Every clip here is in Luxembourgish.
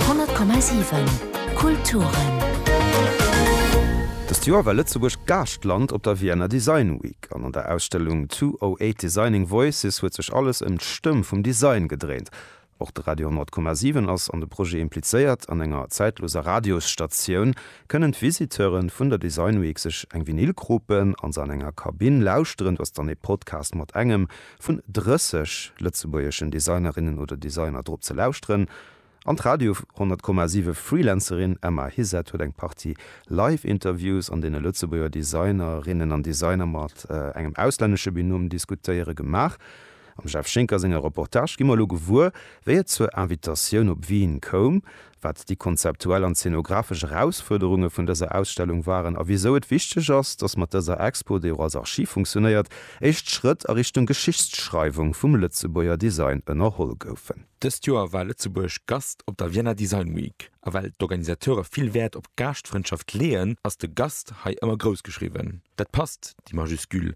100,7 Kulturen. Dëst Joer war Lëtzebuerg Gaaschtland op der Vienna Design Week an an der Ausstellung 208 Designing Voices huet sech alles ëm d'Stëmm vum Design gedréint. Och de Radio 100,7 ass an de Projet implizéiert. An enger zäitloser Radiosstatioun kënnen d'Visiteure vun der Design Week sech eng Vinyl kropen a se an enger Kabinn lauschteren. Du ass dann ee Podcast mat engem vun 30 lëtzebuergeschen Designerinnen oder Designer drop ze lauschteren an d'Radio 100,7 Freelancerin Emma Hysett huet eng Partie Live-Interviews an deene Lëtzebuerger Designerinnen an Designer mat engem auslännesche Binôme diskutéiere gemaach. Am Jeff Schinker senger Reportage gi mer elo gewuer, wéi et zur Invitatioun op Wien koum wat déi konzeptuell an zenografesch Erausfuerderunge vun dëser Ausstellung waren a wisou et wichteg ass, dass mat dëser Expo, déi och als Archiv funktionéiert, éischt Schrëtt a Richtung Geschichtsschreiwung vum Lëtzebuerger Design ënnerholl goufen. Dëst Joer war Lëtzebuerg Gast op der Vienna Design Week, a well d'Organisateure vill Wäert op Gaaschtfrëndschaft leeën, ass de Gast hei ëmmer groussgeschriwwen. Dat passt, déi Majuscule,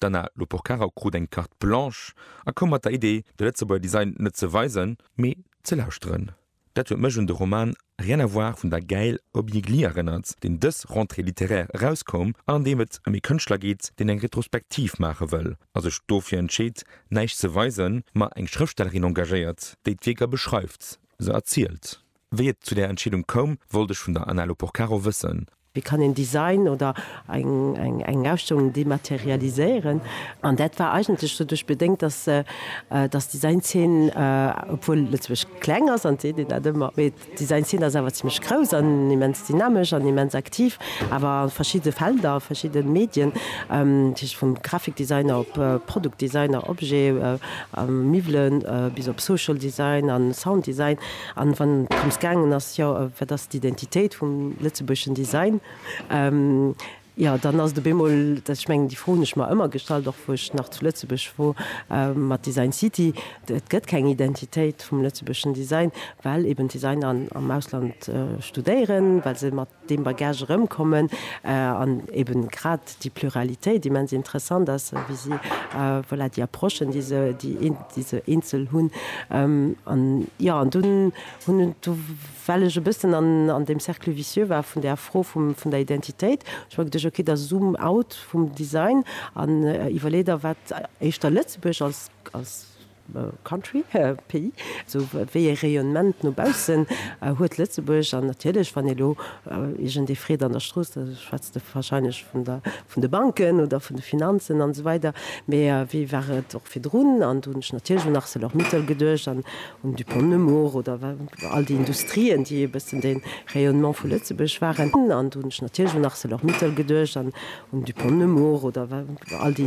D'Anna Loporcaro krut eng Carte blanche a koum mat der Idee, de Lëtzebuerger Design net ze weisen, mee ze lauschteren. Dat huet mech un de Roman Rien à voir vun der Gaëlle Hobby-Gli erënnert, deen dës Rentrée littéraire erauskoum an an deem et ëm ee Kënschtler geet, deen eng Retrospektiv maache wëll a sech dofir entscheet, näischt ze weisen, ma eng Schrëftstellerin engagéiert, déi d'Wierker beschreift, se erzielt. Wéi et zu där Entscheedung koum, wollt ech vun der Anna Loporcaro wëssen, Wéi kann een Design oder eng Ausstellung dematerialiséieren? An dat war eigentlech doduerch bedéngt, datt d'Design-Zeen, obwuel Lëtzebuerg kleng ass, an et seet een dat ëmmer, mee d'Design-Zeen ass awer zimmlech grouss an immens dynamesch an immens aktiv, awer a verschiddene Felder, verschidde Medien, dat heescht vum Graphikdesigner op Produktdesigner, Objet, Miwwelen, bis op Social Design a Sounddesign, An wann et drëms gaangen ass, jo, wat ass d'Identitéit vum lëtzebuergeschen Design, jo, dann ass et op eemol, dass ech mengen, déi Fro hunn ech mer ëmmer gestallt, och wou ech nach zu Lëtzebuerg wor, mat Design City, et gëtt keng Identitéit vum lëtzebuergeschen Design, well eben d'Designer am Ausland studéieren, well se mat deem Bagage erëmkommen an eben grad déi Pluralitéit immens interessant ass, wéi si voilà déi Approchen, déi se, déi se eenzel hunn. An jo, an dunn hunn, do well ech e bëssen an deem Cercle vicieux war vun där Fro vum, vun der Identitéit, hu ech mer geduecht, okay, da zoom out vum Design an iwwerlee der, wat éischter Lëtzebuerg als, als, Country, Pays, esou wéi e Rayonnement no baussen huet Lëtzebuerg. An natierlech, wann elo iergendee freet an der Strooss, da schwätzt e wahrscheinlech vun der, vun de Banken oder vun de Finanzen an esou weider. Mä wéi war et och virdrun? An do hunn ech natierlech un Arcelor-Mittal geduecht an un Dupont de Nemours oder all déi Industrien, déi e bëssen de Rayonnement vu Lëtzebuerg waren. An do hunn ech natierlech un Arcelor-Mittal geduecht an un Dupont de Nemours oder all déi.